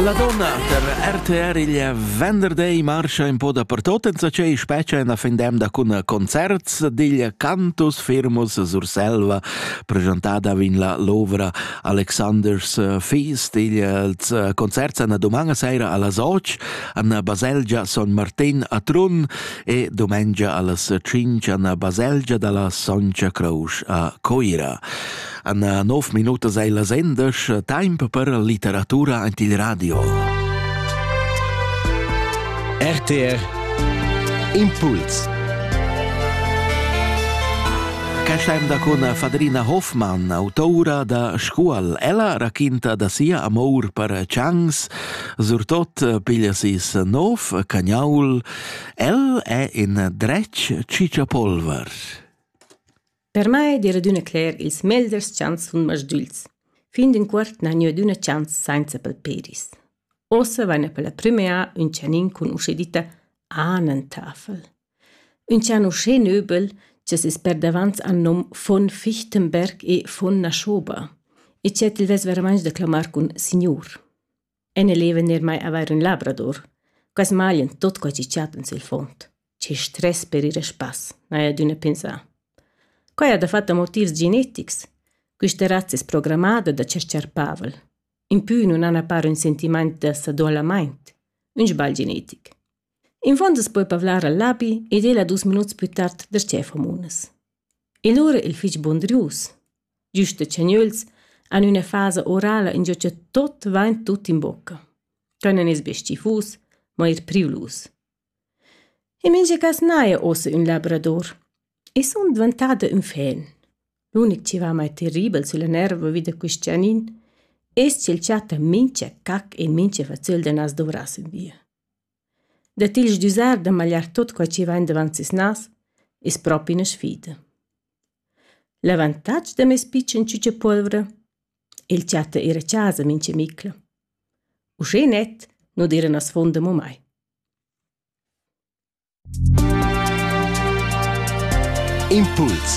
La donna der RTR il venderday marscha in po dapertot enzatgei specia en fin d'emda cun concerts digl Cantus Firmus Surselva presentada vin la l'ovra Alexander's Feast ils concerts an domanga saira allas 8 an baselgia Son Martin a Trun e domengia allas 5 an baselgia dalla Soncia Crouch a Coira. En nov minutas ei la sendesch temp per litteratura ant il radio. RTR Impuls Casciam da con Fadrina Hoffmann, autoura da Scuol. Ella raquinta da sia amor per Changs, surtot piglia sis nov cagnaul. El è in dretg cicciapolver. Per mai d'eira adüna cler ils meglers chants sun masdügls. Fin d'ün cuort n'ha gnü adüna chants sainza palperis. Uossa vaina per la prümera ün chanin cun usche ditta Ahnentafel. Ün chan uschè nöbel cha's es perdavant al nom von Fichtenberg e von Naschoba e chet il vess veramaing da clamar cun signur. En e leva ner mai avair ün labrador. Quas maglien tot quai chi chatten sül fond. Che stress per ir a spass, n'haja adüna pensà. Quai ha dafatta motivs genetics. Quista razza es programmada da tscherchar pavel. Impü nun han a par ün sentimaint da sadoalamaint, ün sbagl genetic. Infond es poi pavlar al labi ed el a dus minuts plü tard da Stefan-Munas. E lura il fich bun drius. Giüst da tschernüels han üna fasa orala ingio cha tot vain tut in bocca. Quai non es be stifus, ma eir privlus. In mincha cas n'haja uossa ün labrador. I sun dvantada ün fen. L'unic chi va mai terribel sülla nerva vi da quist gianin es ch'el chatta mincha cac e mincha fazzöl da nas dovrass ün via. Da til sdüzar da magliar tuot quai chi vain davant seis nas es propi üna sfida. L'avantatg da meis pitschen ciuciapolvra, el chatta eir a chasa mincha micla. Uschè net nu d'eira na sfond amo mai. Impuls